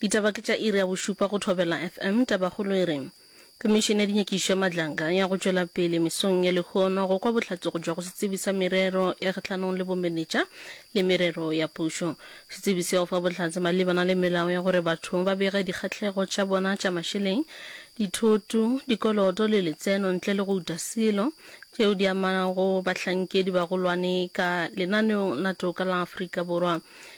Ditaba ke tša iri ya bošupa go Thobela FM. Tabakgolo e re, Komišene ya Dinyakišo ya Matlaka ya go tšwela pele mesong ya lehono go kwa bohlatsogo bja go setsebi sa merero ya kgahlanong le bomenetša le merero ya pušo. Setsebi seo fa bohlatse malebana le melao ya gore batho ba bege dikgahlego tša bona tša mašeleng, dithoto, dikoloto le letseno ntle le go uta selo, tšeo di amago bahlankedi bagolwane ka lenaneong la toka la Afrika Borwa.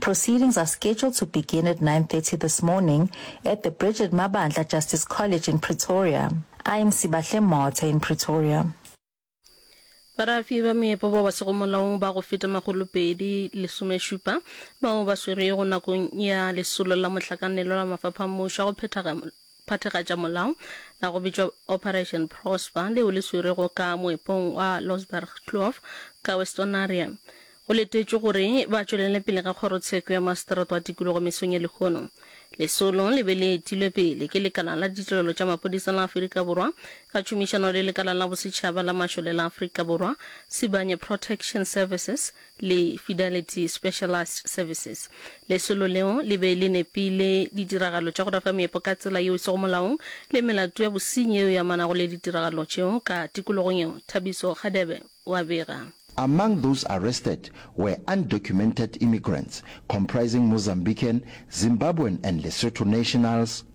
Proceedings are scheduled to begin at 9:30 this morning at the Bridget Mabandla Justice College in Pretoria. I'm Sibahle Motha in Pretoria. Barafi ba meepo ba ba sego molaong ba go feta makgolo pedi lesomešupa bao ba swerwego nakong ya lesolo la mohlakanelwa la mafapha a mmušo a go phethaga phathagatša molao la go bitšwa Operation Prosper leo le swerwego ka moepong wa Losbergkloof ka Westonaria. Go letetšwe gore ba tšwelele pele ka kgorotsheko ya maseteroto a tikologo mesong ya lehono. Lesolo le be le etilwe pele ke Lekala la Ditirelo tša Maphodisa la Afrika Borwa ka tšhomišano le Lekala la Bosetšhaba la Mašole la Afrika Borwa, Sibanye Protection Services, le Fidelity Specialized Services. Lesolo leo le be le nepile ditiragalo tša go rafa meepo ka tsela yeo e sego molaong le melato ya bosenyi yeo e amanago le ditiragalo tšeo ka tikologong yeo, Thabiso Hadebe o a bega. Among those arrested were undocumented immigrants comprising Mozambican, Zimbabwean and Lesotho nationals.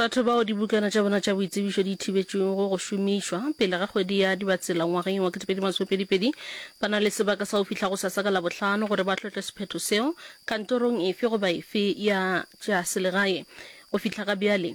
Batho bao dibukana tša bona tša boitsebišo di thibetšwego go šomišwa pele ga kgwedi ya Dibatsela ngwageng wa 2022 ba na le sebaka sa go fihla go sasa ka Labohlano gore ba tlotle sephetho seo kantorong efe goba efe ya tša selegae. Go fihla ga bjale,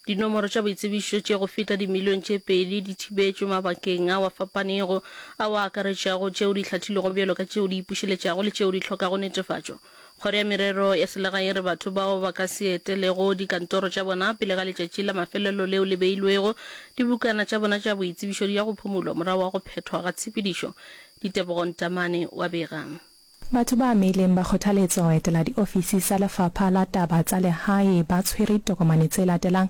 dinomoro tša boitsebišo tše go feta dimilione tše pedi di thibetšwe mabakeng ao a fapanego ao a akaretšago tšeo di hlathilwego bjalo ka tšeo di ipušeletšago le tšeo di hlokago netefatšo. Kgoro ya Merero ya Selegae e re batho bao ba ka se etelego dikantoro tša bona pele ga letšatši la mafelelo leo le beilwego, dibukana tša bona tša boitsebišo di ya go phumulwa morago ga go phethwa ga tshepedišo. Ditebogo Ntamane o a bega. Batho ba amegileng ba kgothaletsa go etela diofisi tsa Lefapha la Taba tsa Legae ba tshwere ditokomane tse latelang,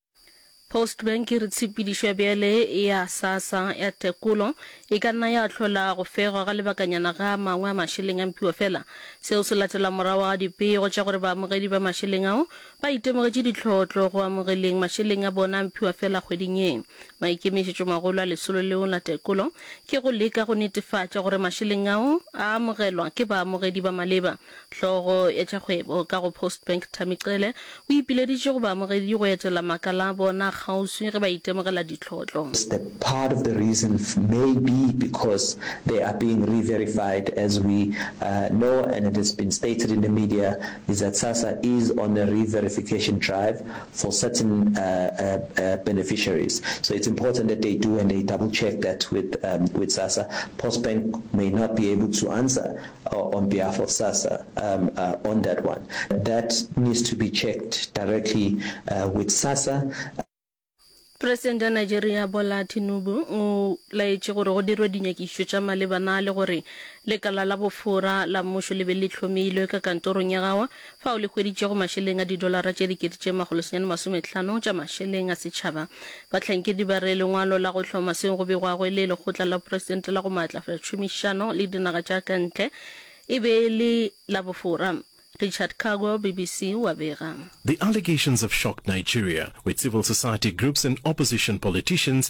Postbank e re tshepedišwa bjale ya SASSA ya tekolo e ka nna ya hlola go fegwa ga lebakanyana ga a mangwe a mašeleng a mpiwa fela. Seo se latela morago ga dipego tša gore baamogedi ba mašeleng ao ba itemogetše ditlhohotlo go amogeleng mašeleng a bona a mpiwa fela kgweding ye. Maikemišetšomagolo a lesolo leo la tekolo ke go leka go netefatša gore mašeleng ao a amogelwa ke baamogedi ba maleba. Hlogo ya tša kgwebo ka go Postbank Tammy Cele o ipileditše go baamogedi go etela makala a bona kgauswi ge ba itemogela ditlhotlo. It's the part of the reason may be because they are being re-verified as we know and it has been stated in the media is that SASSA is on a re-verification drive for certain beneficiaries so it's important that they do and they double check that with with SASSA. Postbank may not be able to answer. or on behalf of SASSA um, uh, on that one. That needs to be checked directly uh, with SASSA. Presidente ya Nigeria Bola Tinubu o laetše gore go dirwe dinyakišišo tša malebana le gore lekala la bofora la mmušo le be le hlomilwe ka kantorong ya gawa fao le hweditšego mašeleng a didolara tše dikete tše makgolo senyane masometlhano tša mašeleng a setšhaba. Bahlankedi ba re lengwalo la go hloma seo go begwago e le Lekgotla la Poresitente la go Maatlafatša Tšhomišano le Dinaga tša ka Ntle e be e le la bofora. Richard Kagwa, BBC, o a bega. The allegations have shocked Nigeria, with civil society groups and opposition politicians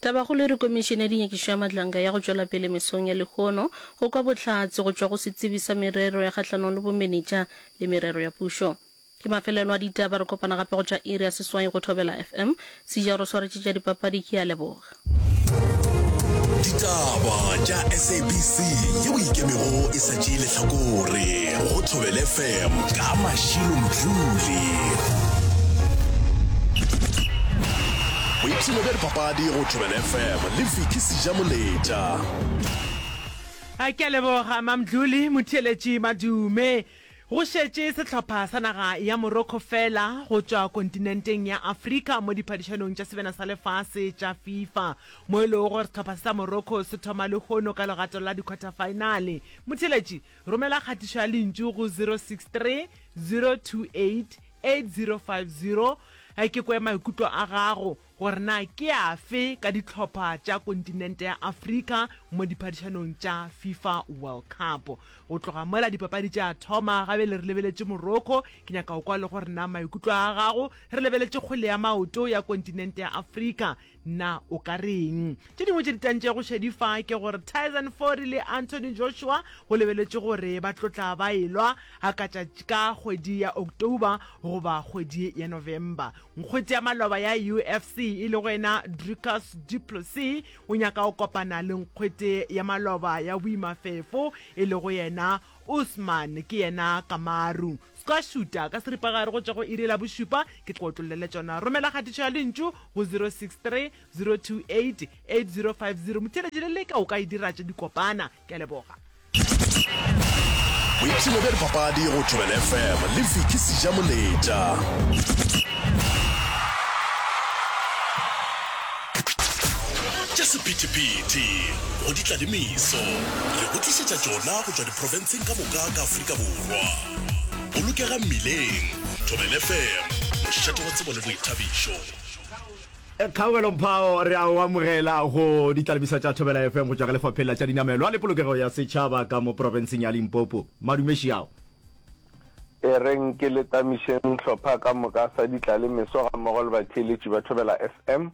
Tabakgolo e re Komišene ya Dinyakišo ya Matlanga ya go tšwela pele mesong ya lehono go kwa bohlatse go tšwa go Setsebi sa Merero ya Kgahlanong le Bomenetša le Merero ya Pušo. Ke mafelelo a ditaba, re kopana gape go tšwa iri ya seswai go Thobela FM. Sija o re swaretše tša dipapadi, ke a leboga. Ditaba tša SABC ye o ikemego e sa tšee lehlakore go Thobel FM ka Mashilo Mdluli. Boipshino bja dipapadi go Thobela FM le Vicky Sejamoletša. A ke a leboga Mamdluli Motheeletši Madume. Go šetše sehlopha sa naga ya Morocco feela go tšwa kontinenteng ya Afrika mo diphadišanong tša sebena sa lefase tša FIFA, mo e lego gore sehlopha se sa Morocco se thoma lehono ka legato la dikhwathafaenale. Motheeletši, romela kgatišo ya lentšu go 063 028 8050 ke kwe maikutlo a gago gore na ke afe ka dihlopha tša kontinente ya Afrika mo diphadišanong tša Fifa World Cup. Go tloga mola dipapadi tša thoma, gabele re lebeletše Morocco, ke nyaka go kwa le gore na maikutlo a gago re lebeletše kgwele ya maoto ya kontinente ya Afrika Na o ka re eng? Tše dingwe tše di tantšego šedi fa ke gore Tyson Fury le Anthony Joshua go lebeletšwe gore ba tlo tla ba e-lwa hakatša ka kgwedi ya October goba kgwedi ya November. Nkgwete ya maloba ya UFC e lego yena Dricus Du Plessis o nyaka go kopana le nkgwete ya maloba ya boimafefo e lego yena Usman ke yena Kamaru. Ska šuta ka seripagare go tšwa go iri la bošupa, ke tla go otlollele tšona. Romela kgatišo ya lentšu go 0630288050. Motheeletši le leka o ka e dira tše di kopana. Ke a leboga. Boipshino bja dipapadi go Thobela FM le Vicky Sijamoletša. Tša sephethephethe go di tla le meso, re go tlišetša tšona go tšwa diprofenseng ka moka ka Afrika Borwa. Bolokega mmileng, Thobela FM, mošate wa tsebo le boithabišo. Kgaogelo Mphao, re a go amogela go ditlalemiso tša Thobela FM go tšwa ka Lefapheng la tša Dinamelwa le Polokego ya Setšhaba ka mo profenseng ya Limpopo. Madumeši ao. E reng ke letamišeng hlopha ka moka sa Ditlalemeso gammogo le batheeletši ba Thobela FM,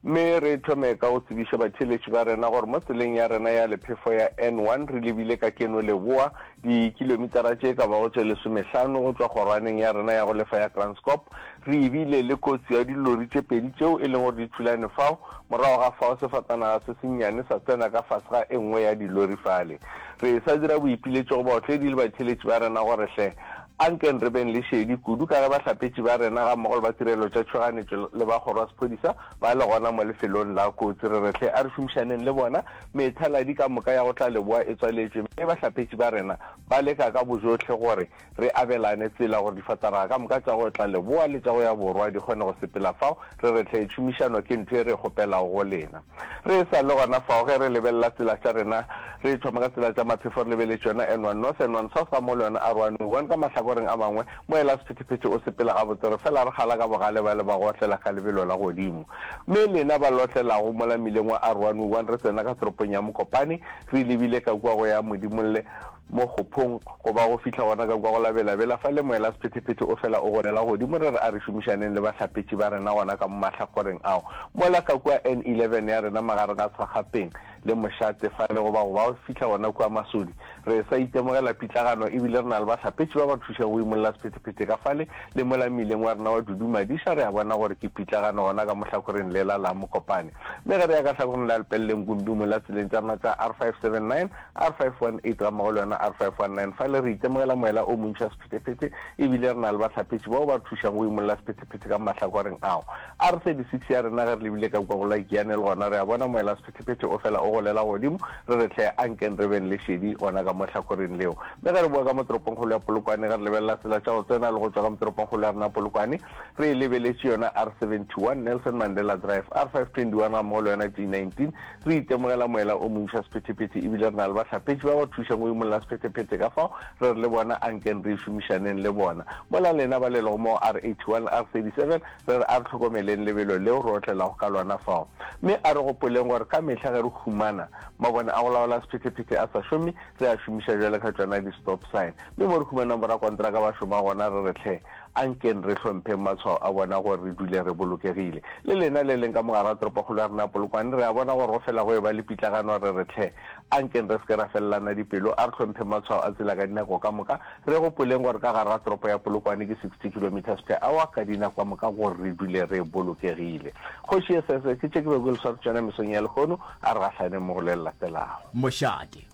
mme re thome ka go tsebiša batheeletši ba rena gore mo tseleng ya rena ya lephefo ya N1 re lebile ka keno leboa dikilomitara tše ka bago tše lesomehlano go tšwa kgorwaneng ya rena ya go lefa ya Kranskop. Re ebile le kotsi ya dilori tše pedi tšeo e leng gore di thulane fao, morago ga fao sefatanaga se sennyane sa tsena ka fase ga e nngwe ya dilori fale. Re e sa dira boipiletšo go baotledi le batheeletši ba rena gore, Hle, ankeng re beng le šedi, kudu ka ge bahlapetši ba rena gammogo le ba Tirelo tša Tšhoganetšo le ba Kgoro ya Sephodisa ba le gona mo lefelong la kotsi. Re re, Hle, a re šomišaneng le bona. Methaladi ka moka ya go tla leboa e tswaletšwe, mme bahlapetši ba rena ba leka ka bojohle gore, re abelane tsela gore difatanaga ka moka tša go tla leboa le tša go ya borwa di kgone go sepela fao re re hle. Tšhomišano ke ntho e re e kgopelago go lena. Re e sa le gona fao, ge re lebelela tsela tša rena, re thoma ka tsela tša maphefo re lebeletše yona N one North, N one South gammogo le yona R one U one ka mahlakoreng a mangwe, mo ela sephethephethe o sepela gabotse, re fela re kgala ka bogale bale ba go otlela ka lebelo la godimo. Mme lena ba le otlelago mola mmileng wa R one U one re tsena ka toropong ya Mokopane, re lebile ka kua go ya Modimolle, Mo kgophong, go ba go fihla gona ka kwa go la belabela, fa Lemoelasephetephete o fela o golela godimo, re re a re šomišaneng le bahlapetši ba rena gona ka mo mahlagoreng ao, mola ka kua N11 ya rena magareng ga Tshwagapeng le Mošate fale, go ba go ba go fihla gona kua Masodi. Re sa itemogela pitlagano e bile re na le bahlapetši ba ba thušago go imolla sephetephete ka fale, le mola mmileng wa rena wa Dudumadiša re a bona gore ke pitlagano gona ka mo hlakoreng lela la Mokopane. Mme ge re ya ka hlakoreng la Lepeleleng kudu mola tseleng tša rena tša R579, R518 gammogo le yona R519 fa le re itemogela moela o montšha sephetephete e bile re na le bahlapetši bao ba re thušang go imolola sephetephete ka mahlakoreng ao. R36 ya rena ge re lebile ka kua go la Ikiane le gona re a bona moela sephetephete o fela o golela godimo re re hle ankeng re beng le šedi gona ka mo hlakoreng leo. Mme ge re boa ka mo toropongkgolo ya Polokwane ge re lebelela tsela tša go tsena le go tšwa ka mo toropongkgolo ya rena Polokwane re e lebeletše yona R71 Nelson Mandela Drive, R521 gammogo le yona T19 Re itemogela moela o montši wa sephetephete e bile re na le bahlapetši ba ba thušang go imolla sephetephete ka fao re re le bona a nkeng re e šomišaneng le bona. Mola lena ba lelago mo go R81, R37, re re a re hlokomeleng lebelo leo re otlelago ka lona fao. Mme a re gopoleng gore ka mehla ge re humana mabone a go laola sephetephete a sa šome, re a šomiša bjalo ka tšona di-stop sign. Mme mo re humanang borakontraka ba šoma gona re re hle, A nkeng re hlompheng matshwao a bona gore re dule re bolokegile. Le lena le leng ka mogare ga toropokgolo ya rena Polokwane, re a bona gore go fela go eba le pitlagano re re tlhe. A nkeng re se ke ra felelana dipelo, a re hlompheng matshwao a tsela ka dinako ka moka, re gopoleng gore ka gare ga toropo ya Polokwane ke 60 kilometres per hour ka dinako ka moka gore re dule re bolokegile. Kgoši ye sese, ke tše ke bego ke le swaretse tšona mesong ya lehono, a re gahlaneng mo go le le latelago. Mošate.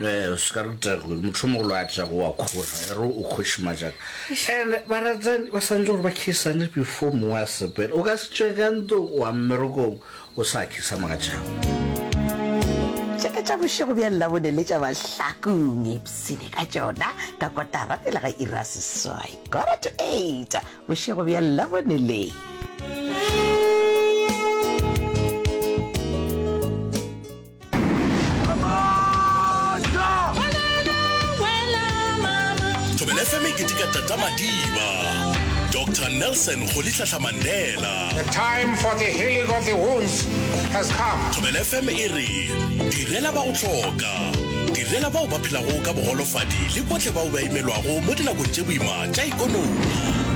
Ee, o se ka re Tagwe, mohlomogolo a tla go a khora, ya re o kgoši majaka. And baratani ba swanetše gore ba khisane before mongwe a sepela. O ka se tšwe ka ntlong wa mmerekong o sa khisa mogatšago. Tše ka tša bošego bja Labone le tša mahlakong, ipshine ka tšona ka kotara pele ga iri ya seswai, quarter to eight, bošego bja Labone le. fm ke dika tata madiba dr nelson go litlahla mandela the time for the healing of the wounds has come thobela fm e re direla ba go tlhoka direla bao ba phelago ka bogolofadi le botlhe bao ba imelwago mo dinakong tse boima tša ikonomi